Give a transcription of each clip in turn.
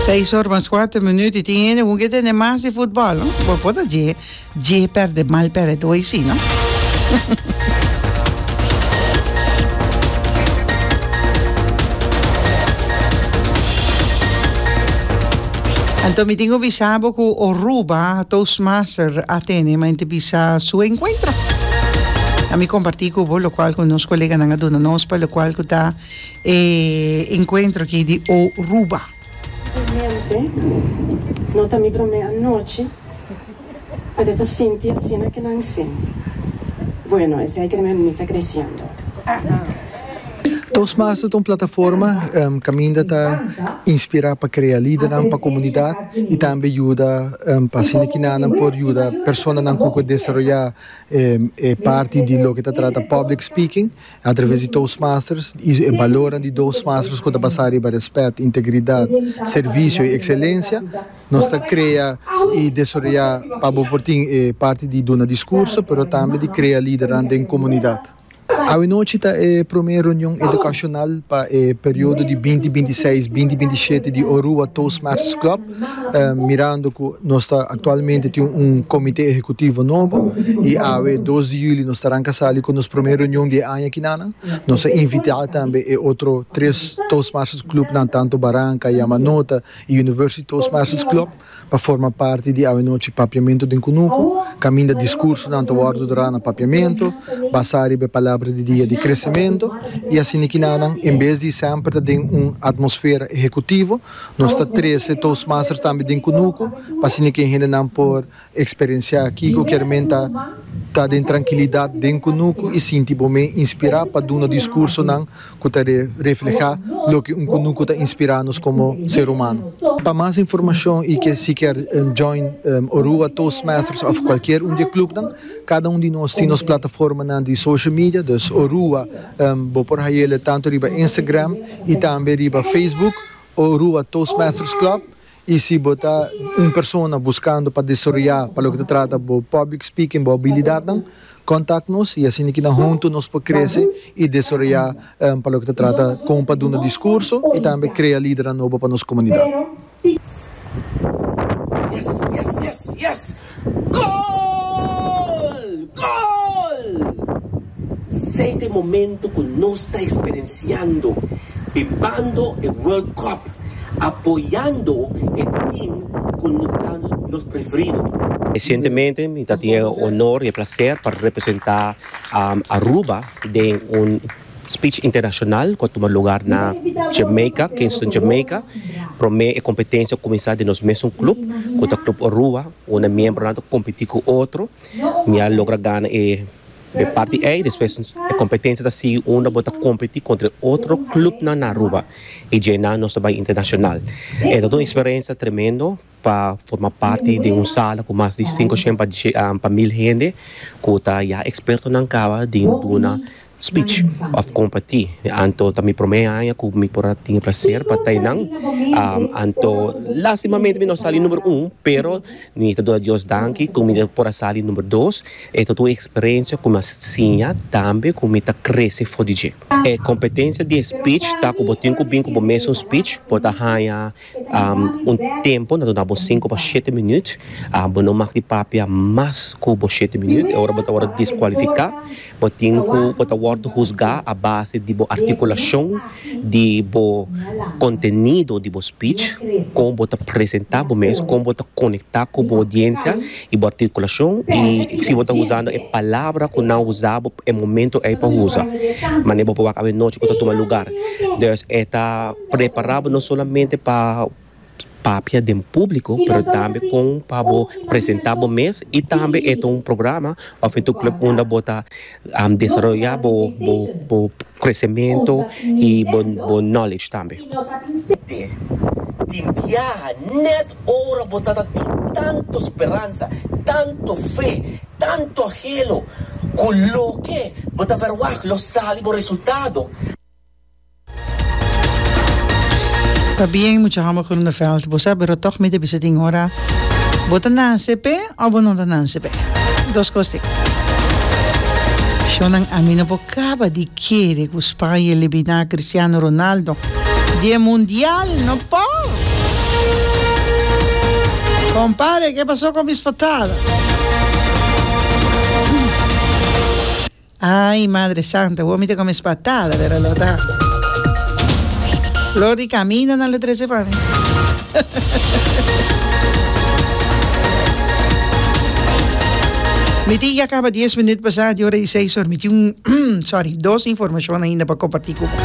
Seis or mas cuater minuut y tin hende cu ke tende mas di futbol, no? Bo por ta dje, dje perde, mal perde tu hoy si, no? Anto mi tin cu bisa bo cu Oruba Toastmaster a tene ma ente bisa su encuentro. A mi comparti cu bo locual cu nos coleganan a duna nos pa locual cu ta E encuentro aki di Oruba. Realmente no ta mi prome anochi pero ta sinti asina ke nan sin bueno esei ke nan mi ta creciendo. Toastmasters ta un plataforma kaminda ta inspirá pa krea lidernan pa komunidat i tambe yuda pa asina ki nan nan por yuda personanan ku por desaroyá e parti di loke ta trata public speaking Atraves di Toastmasters i e balornan di Toastmasters ku ta basá riba rèspèt, integridat, servisio i ekselensia, nos ta krea i desaroyá pa bo por tin e parti di duna diskurso pero tambe di krea lidernan den komunidat. Awenochi ta e promé reunion edukashonal pa e periodo di binti binti seis, binti binti shete di Orua Toastmasters Club. Mirando cu nos ta actualmente tin un comite ehecutivo nobo y awe dos di juli nos ta ranca sali cu nos primer reunion di e aña kina nan, nos a invita tambe e otro tres Toastmasters Clubnan tanto Baranca, Yamanota y University Toastmasters Club pa forma parti di awenochi Papiamento den Cunuco, caminda discursonan ta wordo dra na Papiamento basa riba e palabra di dia di Crecemento y asina kina nan en bes di semper ta den un atmosfera ehecutivo. Nos ta trece Toastmasters tambe den Kunuku pa así niken hendenan por experiencia kiko kier men ta ta den trankilidad den Kunuku y sinti bo men inspira pa duna discursonan cu ta refleha loke un Kunuku ta inspira nos como ser humano. Pa mas informacion y ke si kier join Orua Toastmasters of cualkier un di e clubnan, cada un di nos tin nos plataformanan di social media, dus Orua bo por hayele tanto riba Instagram, y tambe riba Facebook o Rua Toastmasters Club y si bo ta un persona buscando pa desaroya pa loke ta trata bo public speaking bo abilidadnan contact nos y asina kinan hunto nos por crece y desaroya pa loke ta trata con pa duna discurso y tambe crea lidernan nobo pa nos comunidad. Yes yes yes yes Gol! Gol! Sei ta e momento cu nos ta experienciando bibando e World Cup, apoyando e team cu no ta nos preferido. Recientemente mi ta tin e honor y e placer pa representa Aruba den un. Speech Internacional cu a tuma lugar na Jamaica, Kingston Jamaica. Prome e competencia a cuminsa den nos mesun club cu ta Club Orua, unda miembronan ta competi cu otro. Mi a logra gana e parti ey, despues e competencia ta sigui unda bo ta competi contra e otro clubnan na Aruba y dje nan nos ta bay internacional. Ey ta un experiencia tremendo. pa forma parti den un sala ku mas di sinku shèn pa mil hende ku ta ya ekspertonan kaba di duna spich òf kompartí. Anto ta mi promé aña ku mi por a tin e plaser pa ta einan, anto lastimamente mi no a sali numero un pero mi ta duna Dios danki ku mi por a sali numero dos. E tabata un eksperensia ku mi a siña tambe ku mi ta krese for di dje. E kompetensia di e spich ta ku bo tin ku bin ku bo mes un spich, bo ta haña. Un tempo na duna bo sinku pa shete minüt. Bo no mag di papia mas ku bo shete minüt. E ora bo ta wòrdu deskualifiká, bo tin ku bo ta wòrdu husgá a base di bo artikulashon di bo kontenido di bo spich, kon bo ta presentá bo mes, kon bo ta konektá ku bo odiensia i bo artikulashon i si bo ta usando e palabra ku nan usa bo e momentu ei pa usa. Mane bo por wak awe nochi ku ta tuma lugar. Dùs e ta. Preparabo no solamente pa papia den publico pero tambe con pa bo presenta bo mes y tambe e ta un programa of e ta un club unda bo ta desaroya bo bo crecemento y bo bo knowledge tambe. Ta bien mucha homber Groeneveld bo sa pero toch mi ta bisa tin hora bo ta nase pe of bo no ta nase pe dos cos tin shonan ami no por caba di kere cu Spaña elimina Cristiano Ronaldo di e mundial no por compare ke paso cu miss potada. Ay Madre Santa woe mi ta come spatada lera lo ta flor di camino nan lo trece pa mi. Mi tin ya caba dies minuut pasa di ora di seis ora mi tin sorry dos informacion ainda pa comparti cu bo.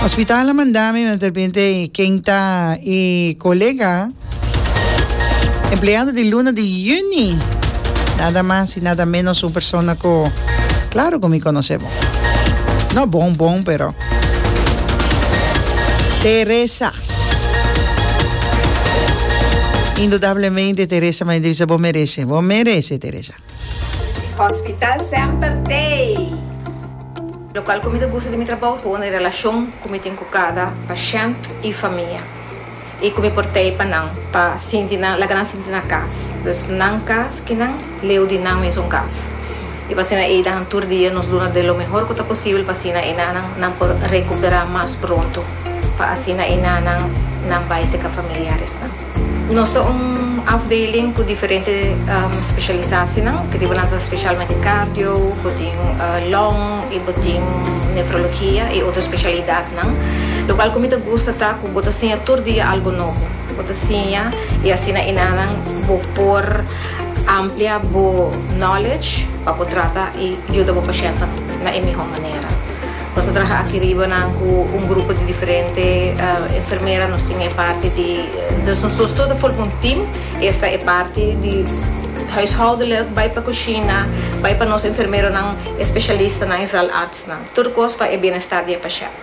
Hospital a manda mi. Ken ta e colega empleado di luna di juni? Nada mas y nada menos un persona cu claro cu mi conoce bo. No bon bon pero Teresa. Indudablemente Teresa m'a bisa bo merece, bo merece Teresa. Hospital semper tei! Locual cu mi ta gusta di mi trabou ta wunde relacion cu mi tin cu cada pashent y famia y cu mi por tei pa nan pa sinti nan laga nan sinti na cas. Dus nan cas ki nan leu di nan mesun cas y pasina ey dan tur dia nos duna de lo mehor cu ta posibel pa asina e nanan nan por recupera mas pronto pa asina e nanan nan bay seca familiares nan. Nos ta un afdeling cu diferente specialisacinan, cu riba nan ta specialmente cardio, bo tin lung y bo tin nefrologia y otro specialidadnan. Lo cual cu mi ta gusta ta cu bo ta siña tur dia algo nobo. Bo ta siña y asina enanan bo por amplia bo knowledge pa bo trata y yuda bo pacientenan na e mihor manera. Nos a traha aki riba nan cu un grupo di diferente enfermera. Nos tin e parti di, dus nos dos tur ta forma un team. Esta e parti di huishoudelijk, bay pa cushina, bay pa nos enfermeronan, e specialistanan, e zaalartsnan. Tur cos pa e bienestar di e pashent.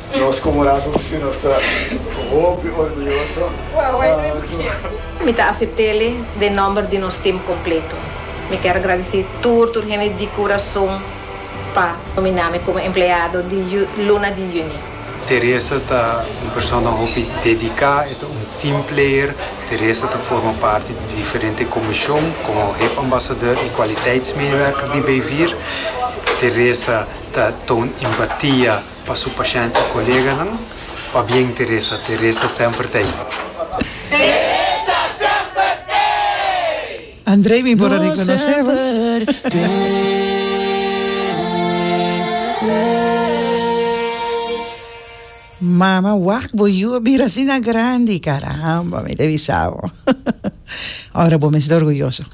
Nos komo Raza Oficial nos ta hopi orguyoso. Mi ta asept'ele den nòmber di nos tim kompleto. Mi kèr gradisí tur tur hende di kurason pa nomináme komo empleado di luna di yüni. Teresa ta un persona hopi dediká, e ta un team player. Teresa ta forma parti di diferente komishon komo Hep Ambasador i Kwaliteitsmeewerker di Beyvier. Teresa ta toon empatia. Pa su pashènt i koleganan. Pabien Teresa, Teresa semper t'ei. Teresa semper t'ei. Andrei mi por a rekonosé bo. Mama wak bo yu a bira asina grandi caramba mi ta bisa bo ora bo mes ta orguyoso.